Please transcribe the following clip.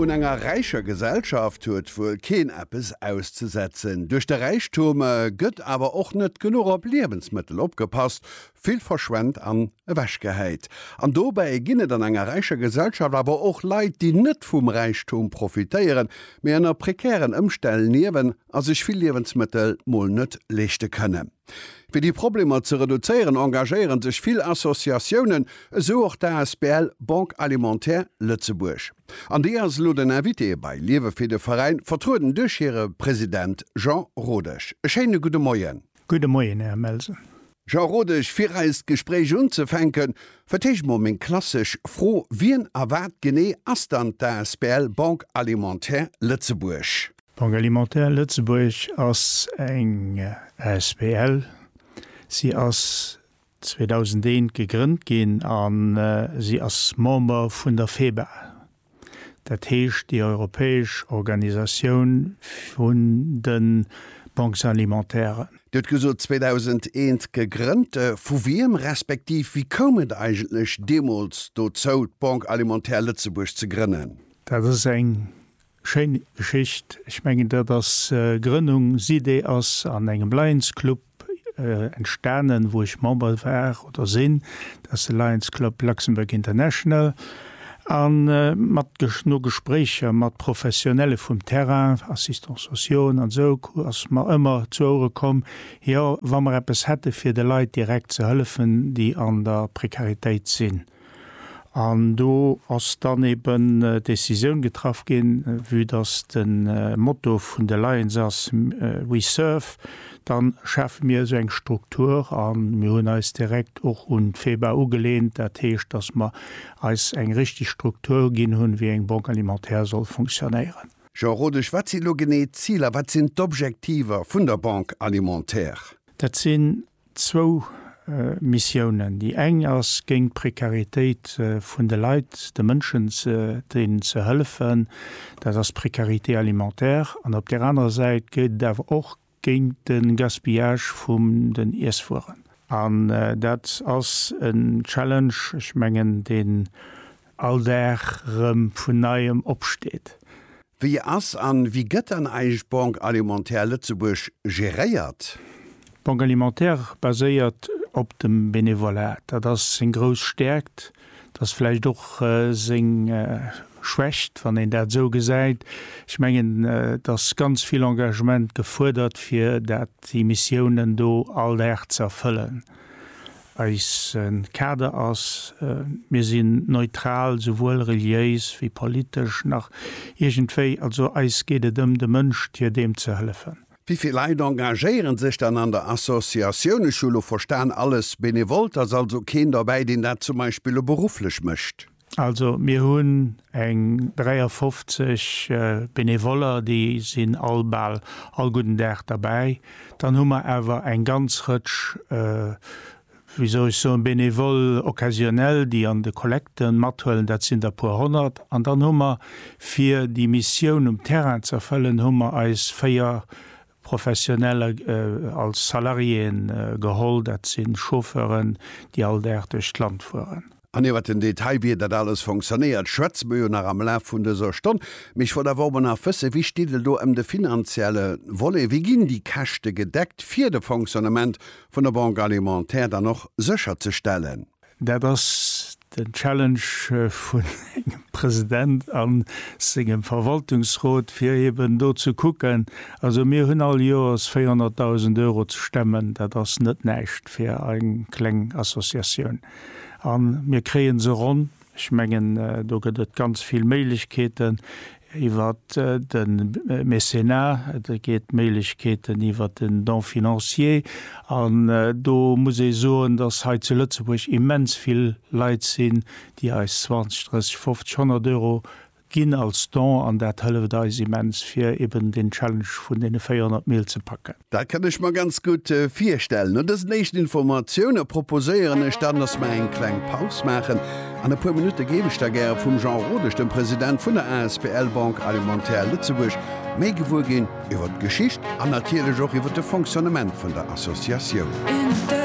Un enger räicher Gesellschaft huet wuel keen eppes auszesetzen. Duerch de Räichtum gëtt awer och net genuch op Liewensmëttel opgepasst, vill verschwent an ewechgehäit. An dobäi ginn et an enger räicher Gesellschaft awer och Leit, déi net vum Räichtum profitéieren, mee ënner prekären Ëmstänn liewen a sech vill Liewensmëttel mol net leeschte kënnen. Fir déi Problemer ze reduzéieren, engagéieren sech vill Associatiounen, esou och d'ASBL Banque Alimentaire Lëtzebuerg. An déi ass elo den Invité bei Liewe Fee, de Veräin vertrueden duerch hire President Jean Rodesch. E schéine gudde Moien. Gudde Moien, Här Melsel. Jean Rodesch, fir eist Gespréich unzefänken, fir d'éischt mol meng klassesch Fro, Wien a wat genee ass dann d'ASBL Banque Alimentaire Lëtzebuerg? Banque Alimentaire Lëtzebuerg ass eng asbl. Si ass 2001 gegrënnt ginn a si ass Member vun der FEBA, dat heescht déi europäesch Organisatioun vun de Banques alimentairen. Dir hutt gesot 2001 gegrënnt. Vu wiem, respektiv wéi koum et eigentlech deemools dozou, d'Banque Alimentaire Lëtzebuerg ze grënnen? Dat ass eng Schéin Geschicht. Ech mengen dat ass Grënnung, SIDE ass an engem Lions Club entstanen wou ech Member war oder sinn, dat ass de Lions Club Luxembourg International. A mat no Gespréicher mat Professionelle vum Terrain, Assistants sociaux an esou, ass mer ëmmer zu Ouere komm, jo wa mer eppes hätte fir de Leit direkt ze hëllefen déi an der Prekaritéit sinn, An do ass dann eben d'Decisioun getraff ginn, vue dass de Motto vun de Lions ass We serve, dann schafe mir esou eng Struktur a mir hunn eis direkt och un d'FEBA ugelehnt, dat heescht, dass mer eis eng richtig Struktur ginn hunn, wéi eng Banque alimentaire soll funktionéieren. Jean Rodesch, Wat si lo genee d'Ziler, wat sinn d'Objektiver vun der Banque alimentaire? Dat sinn Zwou Missiounen. Déi eng ass géint d'Prekaritéit vun de Leit, de Mënschen, deenen ze hëllefen. Dat ass d'Précarité alimentaire. An op där anerer Säit geet et awer och géint de Gaspillage vum den Iesswueren. An dat ass en Challenge, ech mengen, deen All Dag rem vun neiem opsteet. Wéi ass an wéi gëtt dann eig Banque Alimentaire Lëtzebuerg geréiert? D'Banque Alimentaire baséiert op dem Benevolat. Dat ass seng grouss Stärkt, dat ass vläicht och seng Schwächt, wann een dat esou gesäit. Ech mengen, et ass ganz vill Engagement gefuerdert, fir dat, déi Missiounen do all Dag ze erfëllen. Eise Kader ass, Mir sinn neutral, souwuel reliéis wéi politesch nach iergendwéi. Also eis geet et ëm de Mënsch, d'Hier deem ze hëllefen. Wéi vill Leit engagéieren sech dann an der Associatioun? Ech hu lo verstan, alles Benevolt, ass also keen derbäi, deen dat zum Beispill lo berufflech mécht? Also mir hunn eng 53 Benevoller, déi sinn all bal all gudden Dag derbäi. Dann hu mer awer eng ganz Rëtsch, wéi soll ech soen, Bénévoles occasionnels, déi an de Kollekte mathuelen, dat sinn der e puer honnert. An dann hu mer, fir déi Missioun um Terrain ze erfëllen, hu mer eis véier Professioneller als Salariéen geholl, dat si Chauffeuren, déi all Dag duerch d'Land fueren. An iwwert den Detail, wéi dat alles fonctionnéiert, schwätze mer jo nach am Laf vun dëser Stonn. Mee ech wollt awer ower nach wëssen, Wéi steet et elo ëm de finanzielle Volet? Wéi ginn déi Käschte gedeckt, fir de Fonctionnement vun der Banque alimentaire dann och sécherzestellen? Dat ass den Challenge vun engem President a sengem Verwaltungsrot, fir eben do ze kucken. Also mir hunn all Joers 400.000 Euro ze stemmen. Dat ass net näischt fir eng kleng Associatioun. A mir kréie se ronn. Ech mengen, do gëtt et ganz vill Méiglechkeeten iwwer de Mécénat, et gétt Méiglechkeeten iwwer den Don financier. An do muss ee soen, dass hei zu Lëtzebuerg immens vill Leit sinn, déi eis 20, 30, 50, 100 Euro, Ginn als Don an dat hëlleft eis immens fir eben den Challenge vun den 400 Mil ze packen. Dat kann ech mer ganz gutt virstellen. No dësen éischten Informatioune proposéieren ech dann, datt mer eng kleng Paus maachen. An e puer Minutte géif ech da gäre vum Jean Rodesch, dem President vun der asbl Banque Alimentaire Lëtzebuerg, méi gewuer ginn iwwer d'Geschicht an natierlech och iwwer de Fonctionnement vun der Associatioun.